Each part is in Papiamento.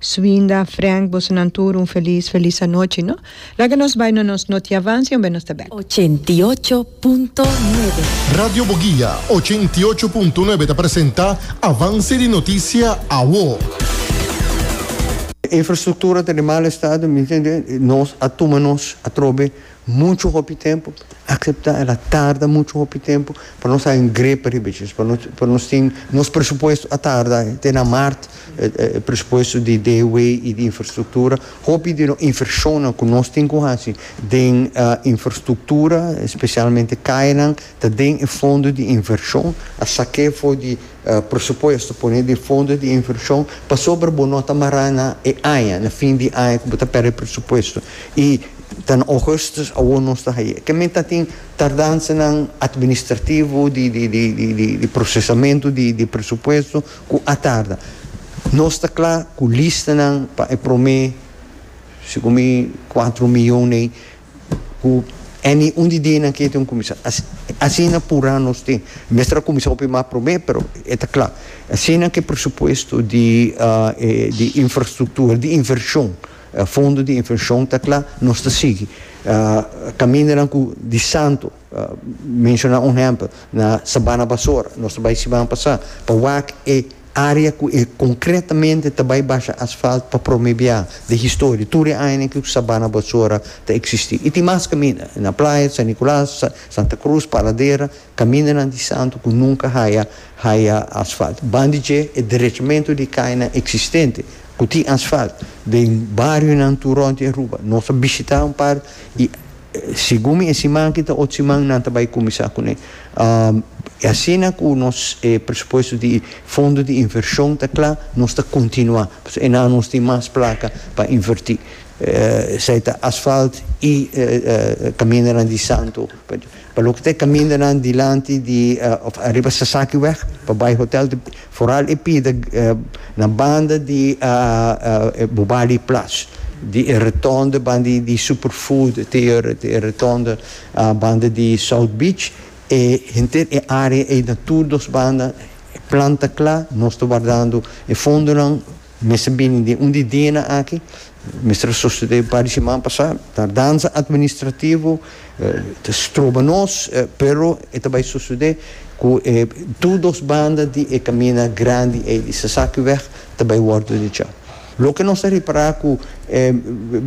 Swinda, Frank, bosonan tur un felis felis anochi no. Laga nos bai na nos notiavansi un benos ta bek. Ochenta i ocho punto nuebe. Radio Boguia ochenta i ocho punto nuebe ta presenta Avanse di Noticia Awo. Infrastructura ta den mal estado, nos a tuma nos atrobe Muchu hopi tempu, acepta el a tarda muchu hopi tempu pa nos haña un grepa riba dje pa nos pa nos tin nos presupuesto a tarda te na mart e presupuesto di DW y di infrastructura hopi di nos invershonnan cu nos tin cu haci den infrastructura specialmente cayanan ta den e fondo di invershon a saque fo di Presupuesto pone di fondo di invershon pasobra bo no ta mará na e aña, na fin di aña ku bo ta pèrdè presupuesto i ta na ogùstùs awor nos ta hañ'é. Kemente a tin tardansanan atministrativo di di prosesamentu di presupuesto ku a tarda. Nos ta kla ku listanan pa e promé, sigun mi, kuatru mion ei. ku any un di dianan ke te un kuminsá asina purá nos tin mester a kuminsá hopi mas promé pero e ta kla asina ke presupuesto di di infrastruktura di invershon fondo di invershon ta kla nos ta sigui kamindanan ku di santo. Pa menshona un ehèmpel, na sabana basora, nos ta bai siman pasá pa wak e área ku e konkretamente ta bai basha asfalt pa promé bia den historia, tur e añanan ku sabana basora ta eksistí. I tin mas kaminda, na Playa, San Nicolas, Santa Cruz, Paradera, kamindanan di Santu ku nunka haya haya asfalt. Ban di dje e derechamentu di kainan eksistente ku tin asfalt den barionan tur rònt di Aruba, nos a bishitá un par i. Segun mi e siman aki ta ocho siman nan ta bai kuminsá kuné. I asina ku nos e presupuesto di fondo di invershon ta kla, nos ta kontinuá, pasobra e nan nos tin mas plaka pa invertí. Esei ta asfalt i kamindanan di Santo. Pa loke ta e kamindanan dilanti di òf ariba Sasaki wèg pa bai hotèl. Foral e pida na banda di Bobali Plash, di e retonde banda di Superfood te e retonde banda di South Beach, e henter e area ei na tur dos banda planta cla, nos ta wardando e fondonan. Mester bini den un di dianan aki, mester a sosode un par di siman pasá. Tardanza administrativo ta stroba nos, pero e ta bai sosode ku e tur dos banda di e kaminda grandi ei di Sasaki wèg ta bai wòrdu dechá. Loke nos ta repará ku e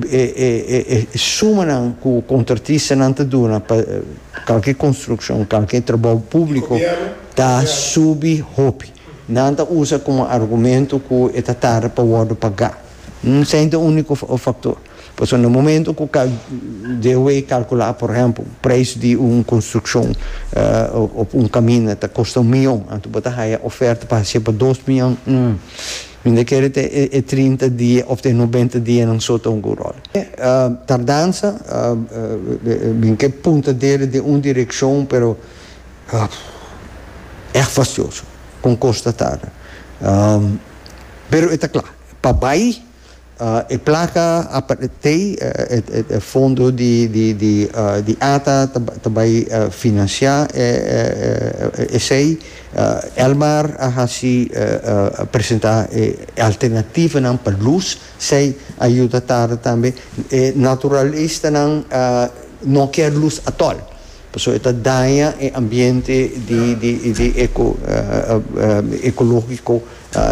e sumanan ku kontratistanan ta duna pa kalke konstrukshon, kalke trabou públiko ta subi hopi. Nan ta usa komo argumento ku e ta tarda pa wòrdu pagá. Esei ta úniko faktor. Pasobra na momento ku DOW kalkulá, por ehèmpel, preis di un konstrukshon òf un kaminda ta kosta un miyon, anto bo ta haya ofèrta pa hasié pa dos miyon, hm, mi no ta kere te e trinta dia òf te e nobenta dianan so ta un good ròl. Tardansa, bin ke punta deri den un direkshon, pero. Ap. Erg fastioso, con constatada. Pero e ta cla, pa bay e placa a partey e fondo di ata ta bay financia esey. Elmar a haci presenta e alternativanan pa luz, sey a yuda tarde tambe. E naturalistanan no kier luz atol. Pasobra e ta daña e ambiente di eco ecologico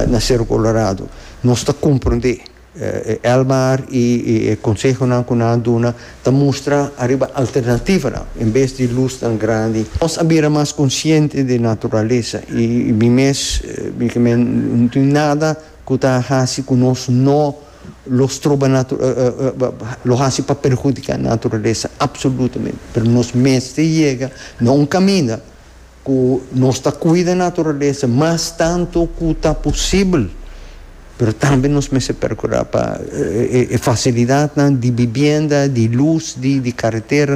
na Cerro Colorado. Nos ta comprende. Elmar y e consehonan cu nan a duna ta mustra ariba alternativanan en bes di luz tan grandi. Nos a bira mas consciente di naturalesa y mi mes, mi caminda, no tin nada cu ta haci cu nos no lo stroba lo hasi pa perhudica naturalesa absolutamente pero nos mester yega na un caminda cu nos ta cuida naturalesa mas tanto cu ta posibel pero tambe nos mester percura pa e facilidadnan di bibienda di luz di caretera.